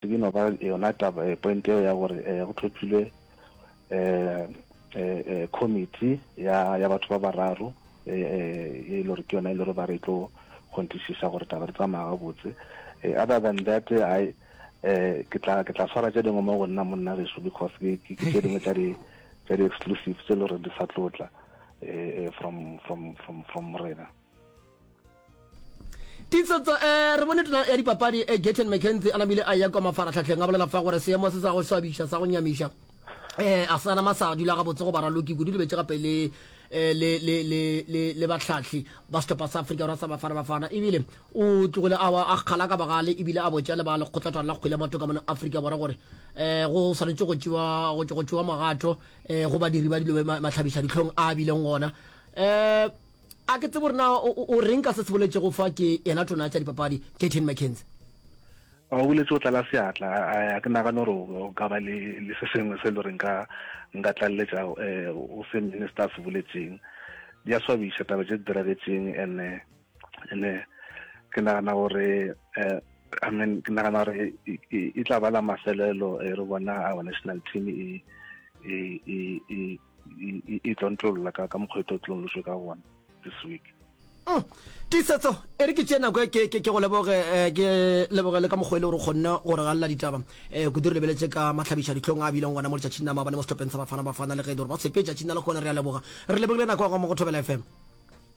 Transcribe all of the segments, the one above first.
E no ba yona taba eh, point eo ya gore eh, go tlhophilwe eh, eh, eh, committee ya, ya batho ba bararo eh, eh, e le gore ke yona e le gore ba re tlo kgontisiša gore taba re tsamaya gabotse eh, other than that eh, I, eh, ke tla ke tla swara tše dingwe mo go nna monna geso because ke ke ke tše dingwe tša di tša di exclusive tše e le gore di sa tlotla eh, eh, from from from from rena Titso tsa eh, re bone tona ya dipapadi eh, Gayton McKenzie a namile a ya kwa mafaratlhatlheng a bolela fa gore seemo se sa go swabiša sa go nyamiša eh a sana masa dula ga botse go baraloki kudu lebetse gape le eh, le le le le le batlhatlhi ba setlhopha sa Afrika Borwa sa Bafana Bafana ebile o tlogile a a kgala ka bagale ebile a botša le ba lekgotlhatwana la kgwele matoka mona Afrika Borwa gore eh go swanetse go tšewa go tšewa magato eh go badiri ba dilo matlhabiša ditlhong a bileng gona eh A ke tsebe gore na o reng ka se se boletšego fa ke yena tona ya tša dipapadi, Gayton McKenzie. O boletše go tlala seatla. A ke nagane gore o ka ba le se sengwe se e le gore nka tlaleletša go se minister a se boletšeng. Di a swabiša taba tše di diragetšeng and-e ke nagana gore I mean ke nagana gore e tla ba la mafelelo re bona our national team e e tlontlolola ka ka mokgwa e tlo tlonloswe ka gona this week mm. tisetso e re ke tšee nako e ke go leboge eh, ke leboge le ka mokgwa e le gore kgonne go re galela ditaba um eh, kudu re lebeletse ka matlhabiša ditlhong a bileng gona mo letšatšing la maabane mo setlhopheng sa bafana bafana le ge e le gore ba sepetšatšing la lekgone re a leboga re lebogile nako ya go mo go thobela fm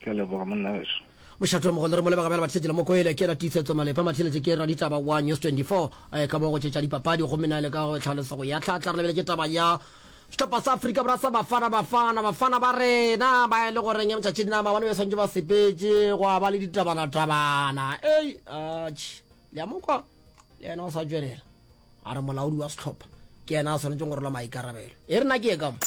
Ke a leboga monna weso. Mošate wa mogolo re mo lebega bjale batlišetše le mokoele ke yena tiisetso malepa mathiletše ke raditaba wa news 24 ka mo go tšetša dipapadi gomme na le ka go tlhalosa go ya tlhatla re lebeletše taba ya sehlopha sa afrika bora sa bafana bafana bafana ba rena ba e le goreng ya motšatši nna maabane ba swantše ba sepetše go a ba le ditabana tabana ei atš le ya mokwa le yena o sa tšwelela a re molaodi wa sehlopha ke yena a swanetšeng go rola maikarabelo e rena ke ye ka mo